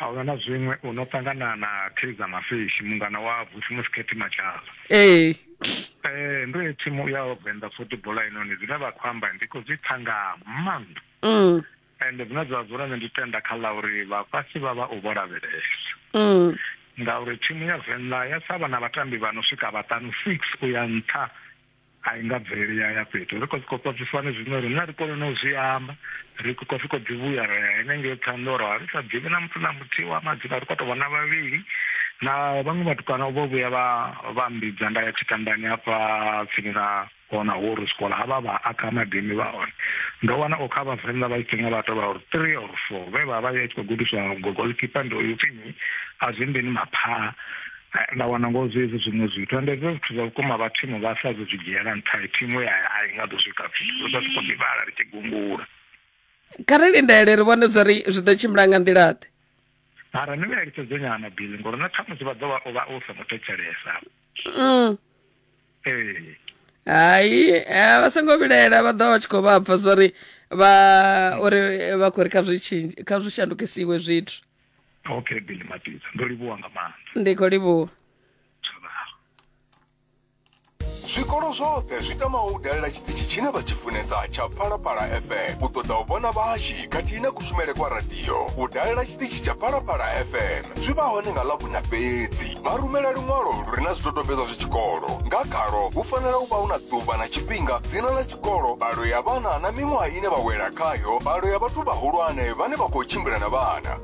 A huna na zwiṅwe u no ṱangana na Kaizer Mafishi mungana wa Vusimusi Cathy Matshala. Ee. Ee ndo ya thimu ya Venḓa Football heinoni zwine vha khou amba ndi khou zwi pfa nga maanḓa. Mm. Ende zwine zwa dzula nṋe ndi tenda kha ḽa uri vhafhasi vha vha u vho lavhelesa. Mm. Ngauri thimu ya Venḓa ya sa vha na vhatambi vha no swika vhaṱanu six u ya nṱha a i nga bveleli ya ya fhethu ri khou sokou pfa zwifani zwine riṋe ri kone no zwi amba ri khou sokou ḓi vhuya ra ya henengei ṱhanḓoro a ri sa ḓivhi na muthu na muthihi wa madzina ri khou tou vha na vhavhili na vhaṅwe vhatukana vho vhuya vha vha mbidza nda ya tshitandani hafha tsini na hona ho ri sikola ha vha vha akha madimi vha hone ndo wana o kha vhavenḓa vha tshi nga vha tou vha uri three or four vhe vha vha ya tshi khou gudiswa gogoḽikipa ndi uyu pfhi a zwi mbini maphaa eh, nda wana ngo zwi hezwi zwiṅwe zwithu ende hezwo zwithu zwa vhukuma vha thimu vha sa zwi dzhiela nṱha thimu ya a i nga ḓo swika fhethu zwa siko ḓivhala ri tshi gungula kha ri lindele ri vhone zwa ri zwi ḓo tshimbila nga nḓila ḓe mara ni vha eletshedze nyana bili ngori na khamusi vha ḓo vha u vha u songo thetshelesa mm. ee hayi eh, vha songo vhilaela vha ḓo vha tshi khou vha pfa zwa ri vha uri vha khou ri kha zwi shandukisiwe zwithu okay billy matidza ndo livhuwa nga maanḓa ndi khou livhuwa zwikolo zwoṱhe zwi tamaho u dalela tshiṱitshi tshine vha tshi funesa tsha phalaphala fm u ṱoḓa u vhona vhahashi khathihi na kushumele kwa radio u dalela tshiṱitshi tsha phalaphala fm zwi vha hone nga ḽavhuna fhedzi vha rumela luṅwalo lu re na zwidodombedzwa zwa tshikolo nga khalo hu fanela u vha hu na ḓuvha na tshifhinga dzina ḽa tshikolo balo ya vhana na miṅwaha ine vha wela khayo balo ya vhathu vhahulwane vhane vha khou tshimbila na vhana